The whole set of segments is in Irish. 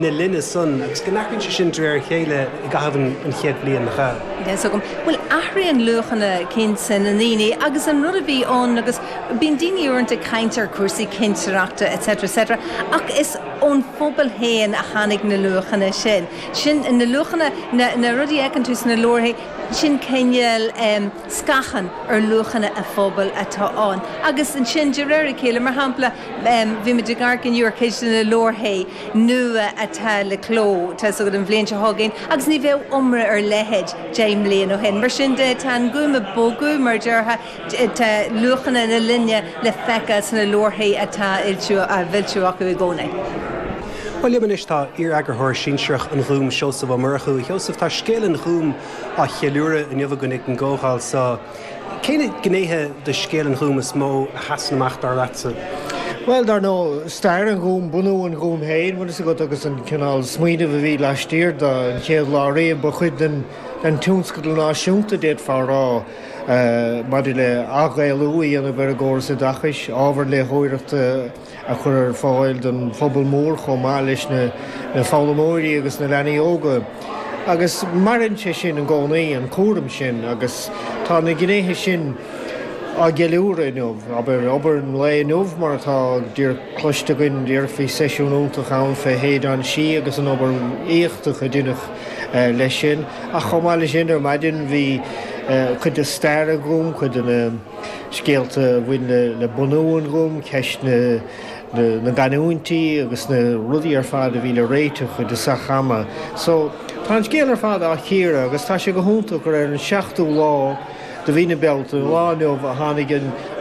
na linne san agus go n-athraíonn sé sin de réir a chéile i gcaitheamh an chéad bliain cha. Deas agam. Bhuel, athraíonn luachanna cinnte na ndaoine agus an rud a bhí ann agus bíonn daoine uaireanta ag caint ar chúrsaí cinsireachta etc etc ach is ón phobal féin a tháinig na luachanna sin. Sin na luachanna, na na rudaí a fheiceann tú sna leabharthaí, sin cineál em scáthán ar luachanna an phobail atá ann agus ansin de réir a chéile, mar shampla em bhí muid ag amharc inniu ar chuid de na leabharthaí, nua atá le cló, tá 'fhios agat, an bhliain seo chugainn agus ní bheadh iomrá ar a leithéid deich mbliain ó shin. Mar sin de, tá an Gúm ag bogadh, mar a déarfá, tá luachanna na linne le feiceáil sna leabharthaí atá á bhfoilsiú acu i gcónaí. Bhuel, liom anois tá iar-eagarthóir sinsearach an Ghúim, Seosamh Ó Murchú. A Sheosaimh, tá Scéal an Ghúim á cheiliúradh inniu againn ag an gcomhdháil so. Cé na gnéithe de scéal an Ghúim is mó a sheasann amach, dar leatsa? Bhuel, dar ndóigh, stair an Ghúim, bunú an Ghúim féin, bhfuil fhios agat, agus an cineál smaoinimh a bhí laistiar de, an chéad lá riamh, ba chuid den tionscadal náisiúnta, d'fhéadfá a rá, maidir le ath-Ghaelú a dhéanamh ar an gcóras oideachais, ábhar léitheoireachta, a chur ar fáil don phobal mór chomh maith leis na foghlaimeoirí agus na leanaí óga. Agus maireann sé sin i gcónaí, an cúram sin, agus tá na gnéithe sin á gceiliúradh inniu. Abair, obair an lae inniu, mar atá díreach cloiste againn, déarfá, bhí seisiún iontach ann fé Shéideán Sí agus an obair éachtach a deineadh leis sin. Ach chomh maith leis sin, ar maidin bhí cuid de stair an Ghúim, cuid de na. scéalta a bhain le bunú an Ghúim, ceist na gcanúintí agus na rudaí ar fad a bhí le réiteach acu i dtosach ama. So, tá an scéal ar fad á chíoradh agus tá sé go hiontach gur ar an seachtú lá de mhí na Bealtaine, an lá inniu, a tháinig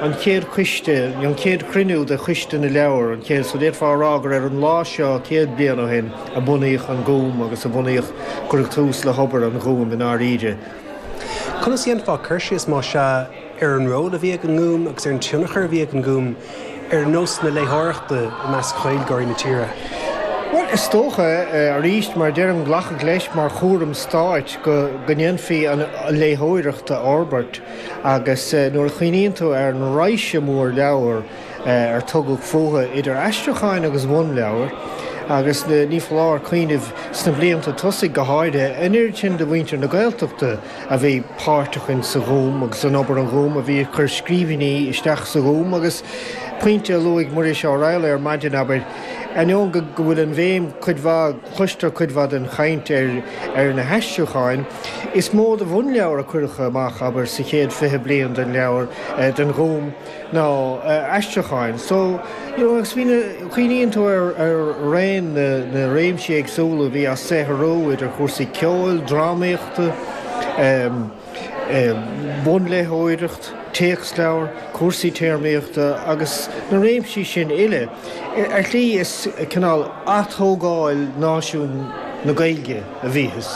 an chéad choiste, an chéad chruinniú de Choiste na Leabhar, an chéad, so d'fhéadfá a rá gur ar an lá seo céad bliain ó shin a bunaíodh an Gúm agus a bunaíodh, cuireadh tús le hobair an Ghúim i ndáiríre. Conas a dhéanfá cur síos, má sea, ar an ról a bhí ag an nGúm agus ar an tionchar a bhí ag an nGúm ar nós na léitheoireachta i measc Ghaeilgeoirí na tíre? Bhuel, is dócha, arís, mar a deirim, glacadh leis mar chúram stáit go ndéanfaí an léitheoireacht a fhorbairt agus nuair a chuimhníonn tú ar an raidhse mhór leabhar, ar tugadh fúthu idir aistriúcháin agus bhunleabhair, agus ní foláir cuimhneamh, sna blianta tosaigh go háirithe, an oiread sin de mhuintir na Gaeltachta a bhí páirteach in sa Ghúm agus in obair an Ghúim a bhí ag cur scríbhinní isteach sa Ghúm agus, pointe a luaigh Muiris Ó Raghallaigh ar maidin, abair, ainneoin go bhfuil an bhéim cuid mhaith, cloistear cuid mhaith den chaint ar na haistriúcháin, is mó de bhunleabhair a cuireadh amach, abair, sa chéad fiche bliain den leabhar, den Ghúm. nó aistriúcháin. So, you know, agus bhí na, cuimhníonn tú ar raon na réimsí éagsúla a bhí á saothrú, idir chúrsaí ceoil, drámaíochta, bunléitheoireacht, téacsleabhair, cúrsaí téarmaíochta agus na réimsí sin uile, ar shlí is cineál aththógáil náisiún na Gaeilge a bhítheas.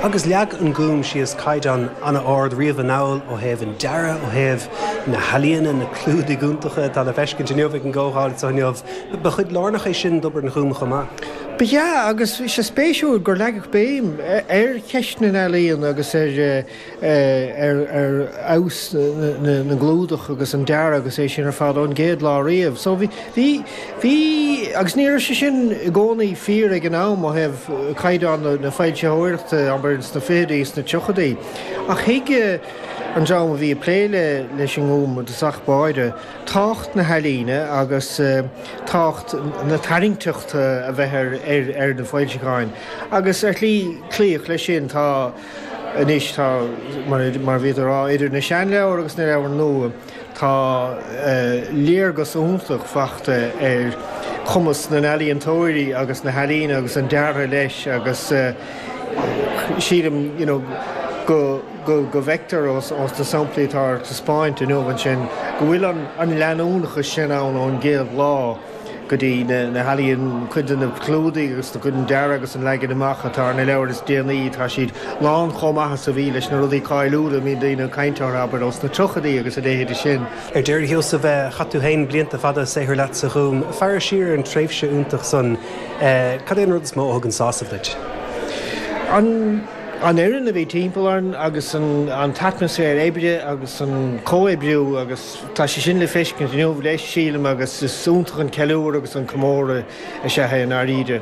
Agus leag an Gúm síos caighdeán an-ard riamh anall ó thaobh an dearadh, ó thaobh na healaíona, na clúdaigh iontacha atá le feiscint inniu ag an gcomhdháil anseo inniu, ba chuid lárnach é sin d'obair an Ghúim chomh maith. Ba ea, agus bhí sé spéisiúil gur leagadh béim ar cheist na n-ealaíon agus ar fheabhas na gclúdach agus an dearadh agus é sin ar fad ón gcéad lá riamh. So, bhí, bhí, bhí, agus ní raibh sé sin i gcónaí fíor ag an am ó thaobh caighdeán na foilsitheoireachta, abair, sna fichidí, sna tríochaidí, ach thuig, an dream a bhí ag plé leis an nGúm i dtosach báire, tábhacht na healaíne agus tábhacht na tarraingteachta a bheith ar na foilseacháin agus, ar shlí, cloíodh leis sin. Tá anois, tá, mar a bhíodh le rá, idir na seanleabhair agus na leabhair nua, Tá léargas iontach feicthe ar chumas na n-ealaíontóirí agus na healaíne agus an deartha leis agus sílim go bhfeictear ó na samplaí atá ar taispeáint inniu ansin go bhfuil an leanúnachas sin ann ón gcéad lá. go dtí na healaíon, cuid de na clúdaigh agus de chuid an dearaidh agus an leagain amach atá ar na leabhair is déanaí, tá siad lán chomh maith is a bhí leis na rudaí cáiliúla a mbíonn daoine ag caint orthu, abair, ó sna tríochaidí agus a leithéide sin. Ar deireadh, a Sheosaimh, chaith tú féin blianta fada saothrú leat sa Ghúm. Ag féachaint siar ar an tréimhse iontach san, cad é an rud is mó a thugann sásamh duit? An fhoireann a bhí timpeall orainn agus an t-atmaisféar oibre agus an comhoibriú agus. Tá sé sin le feiscint inniu, leis, sílim, agus is iontach an ceiliúr agus an comóradh is ea é i ndáiríre.